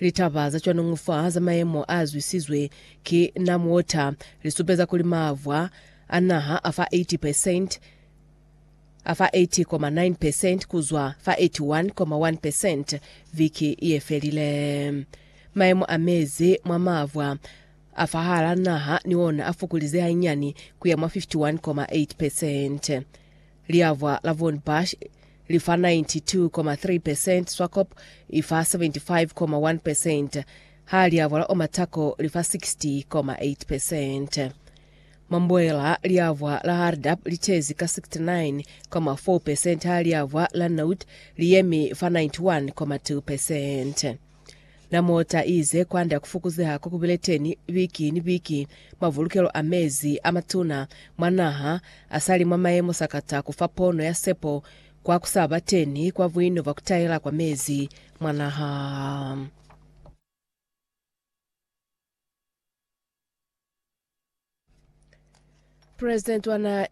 Litaba za cwanungu fa za mayemo a zwisizwe ki Namwater li supeza kuli mavwa a naha a fa 80 percent a fa 80,9 percent ku zwa fa 81,1 percent viki ye felile. Mayemo a mezi mwa mavwa a fahal'a naha ni ona a fukulize hanyani ku ya mwa 51,8 percent. Liavwa la Von Bush li fa 92,3 percent, Swakop i fa 75,1 percent, ha liavwa la Omatako li fa 60,8 percent. Mwa Mboela, liavwa la Hardap li tezi ka 69,4 percent ha liavwa la Nout li yemi fa 91,2 percent. Na mota ize kwanda kufukuzeha ko kubile teni biki ni biki mwa vulukelo a mezi a matuna mwa naha, asali mwa mayemo sakata kufa pono ya sepo kwa kusaba teni kwa buino bwa kutaela kwa mezi mwa naha. President wa naha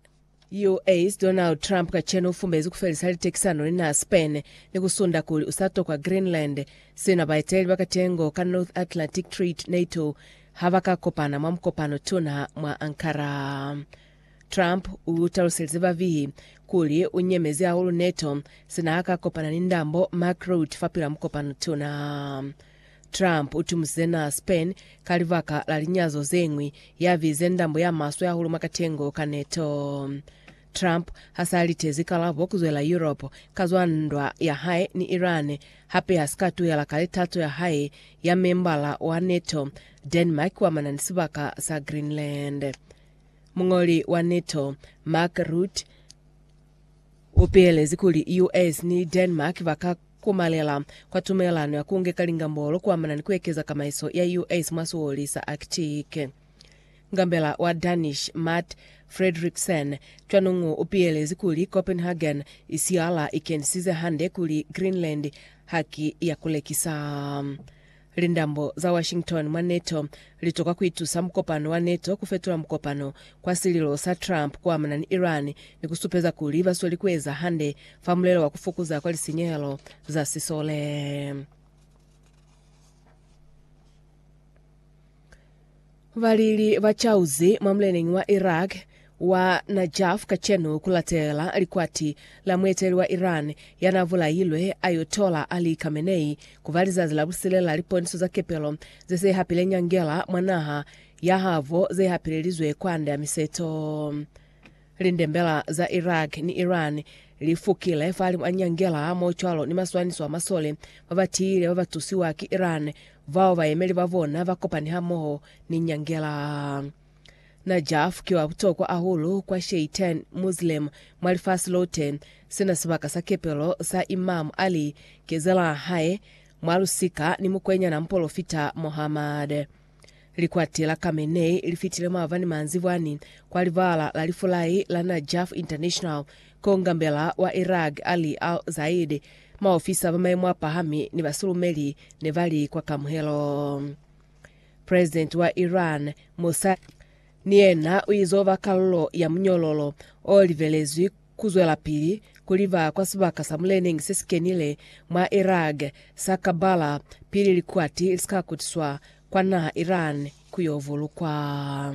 US Donald Trump kacenu ufumbezi kufelisa litekisano ni naha Spain ni kusunda kuli usatokwa Greenland, sina baeteleli ba katengo ka North Atlantic Treaty, NATO, habaka kopana mwa mukopano tuna mwa Ankara. Trump utaluselize bavihi kuli unyemezi hahulu NATO sina haka kopana ni ndambo Mark Rutte fapil'a mukopano tuna. Trump utumuse na Spain ka libaka la linyazo zeñwi, yabize ndambo ya maswe hahulu mwa katengo ka neto. Trump hasalitezi kalabo kuzwela Europe ka zwa ndwa ya hae ni Iran, hape hasika tuhela kale tato ya hae ya membala wa neto Denmark kuamana ni sibaka sa Greenland. Muñoli wa neto Mark Rutte, U pilelezi kuli US ni Denmark ba ka komalela kwa tumelelano ya ku ngeka lingambolo ku amana ni ku ekeza kamaiso ya US mwa sioli sa Arctic. Ngambela wa Danish Matt Frederiksen cwanungu u pilelezi kuli Copenhagen i siyala i kenisize hande kuli Greenland haki ya ku lekisa. Lindambo za Washington mwa NATO litokwa kuitusa mukopano wa NATO kufetula mukopano kwa sililo sa Trump kuamana ni Iran ni kusupeza kuli basweli kueza hande fa mulelo wa kufokoza kwa lisinyehelo za sisole. Balili ba cauzi mwa muleneñi wa Iraq wa Najaf kacenu kulatela likwati la mueteli wa Iran yana bulailwe Ayotollah Ali Khamenei kuba lizazi la busile la liponiso za kepelo zese hapile nyangela mwa naha yahabo zehapilelizwe kwande ya miseto. Lindembela za Iraq ni Iran li fukile fahalimu a nyangela hamohocwalo ni maswaniso a masole ba ba tiile ba ba tusiwa ki Iran bao bayemeli ba bona ba kopani hamoho ni nyangela. Najaf ki wa butokwa ahulu kwa Sheitan Muslim mwa lifasi lote, sina sibaka sa kepelo sa Imam Ali, kezela hae mwa lusika ni mukwenyana Mpolofita Muhammad. Likwati la Khamenei li fitile maabani manzibwani kwa libala la lifulai la Najaf International ko ngambela wa Iraq Ali al-Zaidi, maofisa ba maimo a pahami ni basulumeli ne ba li kwa kamuhelo. Presidenti wa Iran Mosa ni yena u izo ba kalulo ya munyololo o libelezwi kuzwelapili kuliba kwa sibaka sa muleneñi sesikenile mwa Iraq sa Karbala pili likwati lisika kutiswa kwa naha Iran kuyo vulukwa.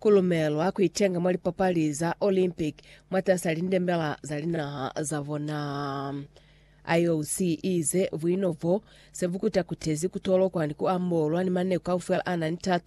Ku lumelwa ku itenga mwa lipapali za Olympic mwatas'a lindembela za linaha za bona. IOC i ize buino bo se bu kuta-kutezi ku tolokwa ni ku ambolwa ni maneku kaufela a na ni tato.